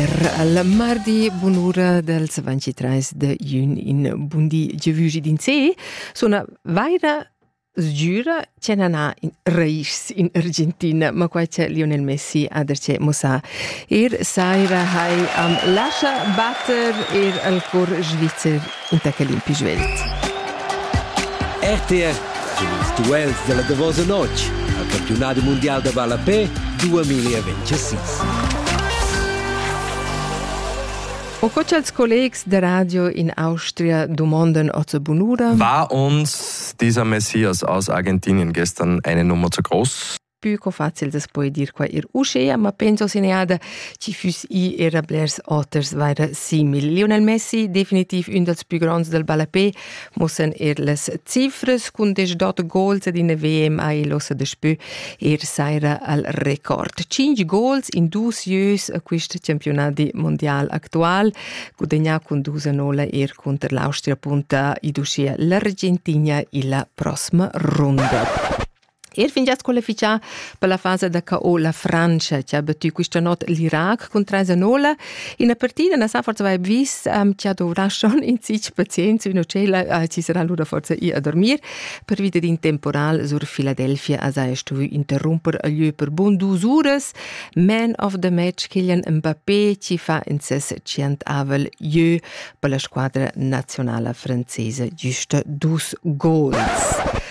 Er la mardi bunura dels 23 de jun in bundi gevugi din se sona vaira sgiura che nana in reis in Argentina ma quai che Lionel Messi ha derce mossa ir saira hai am lascia batter ir al cor svizzer inter quel in pi svelt. RTR ils duels della davosa notg al campionat mundial da ballapé 2026. O co cha'ls collegs da radio in Austria dumondan oter bunura? War uns dieser Messias aus Argentinien gestern eine Nummer zu groß? pü co facil das poi dir qua ir uschea, ma penso seneada chi füss i era blers oters vaira simil. Lionel Messi, definitiv ün dals pü gronds dal ballapé, muossan eir las cifras cun desch dot goals ed in WM ha el ossa daspö eir saira al record. Cinch goals in dusieus a quist campiunadi mondial actual, gudagnà cun dus a nola eir cunter l'Austria punta id uschea l'Argentina illa prossima runda. Er fingià squalifichà per la fasa da KO la Frantscha che ha battu questa not l'Irac cun 3 a 0. Ina partida na sa forse vai vis um, che ha dovrà schon in sich pazienza in cella ci sarà lura forse ir a dormir per vita din temporal sur Philadelphia a sai stu interromper a lieu per bon dus uras man of the match Kylian Mbappé ci fa in ses centavel jeu per la squadra nazionale francese giusta dus gols.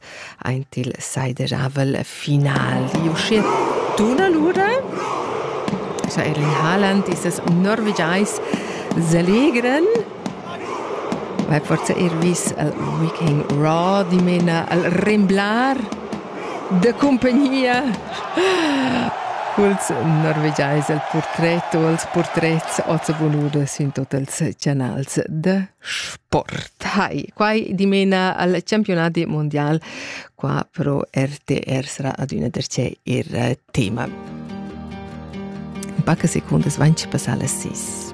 aint il saidejavel final. Di uschier tuna l'ura? Cha Erlin Haaland e ses Norvegiais selegran vai forza er vis al Viking Raw dimena al remblar de compagnia culs norvegiais el portret o els portrets oz voluda sin tot els canals de Sport. Hi, quai dimena al campionati mondial. Qua pro RTR sarà adüna der c'è ir eh, tema. In paca secundas van ci passà las 6.